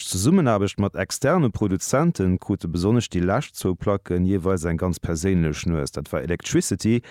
D'Zesummenaarbecht mat externe Produzente krute besonnesch déi lescht zwou Placken jeeweils eng ganz perséinlech Nues. Dat war Electricity,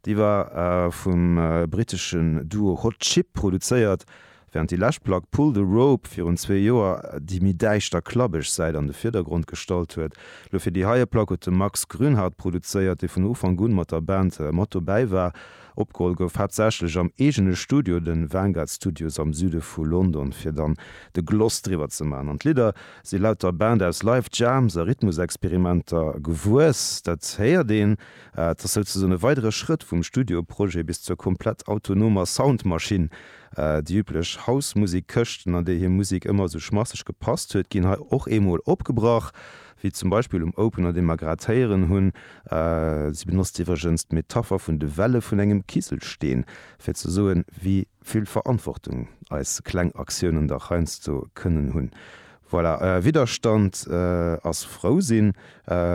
déi war vum britteschen Duo Hot Chip produzéiert, während déi lescht Plack Pull the Rope virun zwee Joer déi méi däischter klabbeg Säit an de Virdergrond gestallt huet. Lo fir déi heie Plack huet de Max Grünhardt produzéiert, dee vun Ufank un mat der Band mat dobäi war. Opgeholl gouf haaptsächlech am eegene Studio, den Vanguard Studios am Süde vu London, fir dann de Gloss driwwer ze maachen. An d'Lidder si laut der Band aus Live Jams a Rhythmusexperimenter gewuess. Dat héiert een. Et ass souzesoen e weidere Schrëtt vum Studioprojet bis zur komplett autonomer Soundmaschinn. Déi üblech House-Musik-Këschten, an déi hir Musik ëmmer esou schmasseg gepasst huet, ginn hei och eemol opgebrach. wéi zum Beispill um Opener, dee mer grad héieren hunn, si benotzt iwwregens d'Metapher vun de Welle vun engem Kiselsteen, fir ze soen, wéi vill Verantwortung eis kleng Aktiounen dach heiansdo kënnen hunn. Voilà, Widderstand ass frou sinn,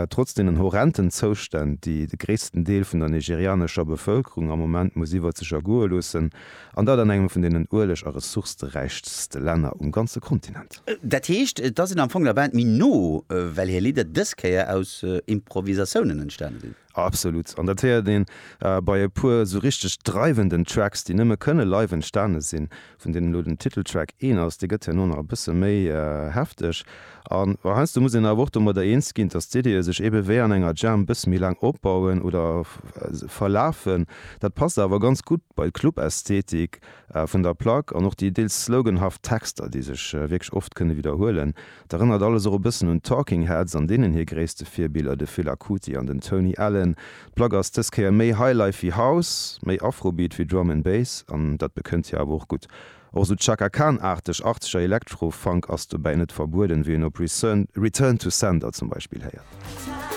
trotz deenen horrenden Zoustänn, déi de gréissten Deel vun der nigerianescher Bevëlkerung am Moment muss iwwer sech ergoe loossen. An dat an engem vun deenen ueleg a ressourceräichste Länner um ganze Kontinent. Dat heescht, et ass een am Fong der Band méi no, well hir Lidder dës Kéier aus Improvisatiounen entstane sinn. Absolut. An dat héiert een bei e puer esou richteg dreiwenden Tracks, déi nëmme kënne live entstane sinn, vun deenen elo den Titeltrack een ass. Dee gëtt herno nach e bësse méi hefteg. A heiansdo muss een awer och domadder eens ginn, dass d'Ideeë sech eebe wéi an enger Jam e bësse méi laang opbauen oder verlafen. Dat passt awer ganz gutt bei d'Club-Ästhetik vun der Plack an och déi deels sloganhaft Texter, déi sech wierklech oft kënne widderhuelen. Et erënnert alles och e bëssen un d'Talking Heads an deenen hir gréisste Virbiller, de Fela Kuti an den Tony Allen. D'Plack ass dës Kéier méi Highlife wéi House, méi Afrobeat wéi Drum and Bass an dat bekënnt hir awer och gutt. Och sou Chaka Khan-aarteg achtzeger Electro-Funk ass dobäi net verbueden, wéi een op Return to Sender zum Beispill héiert.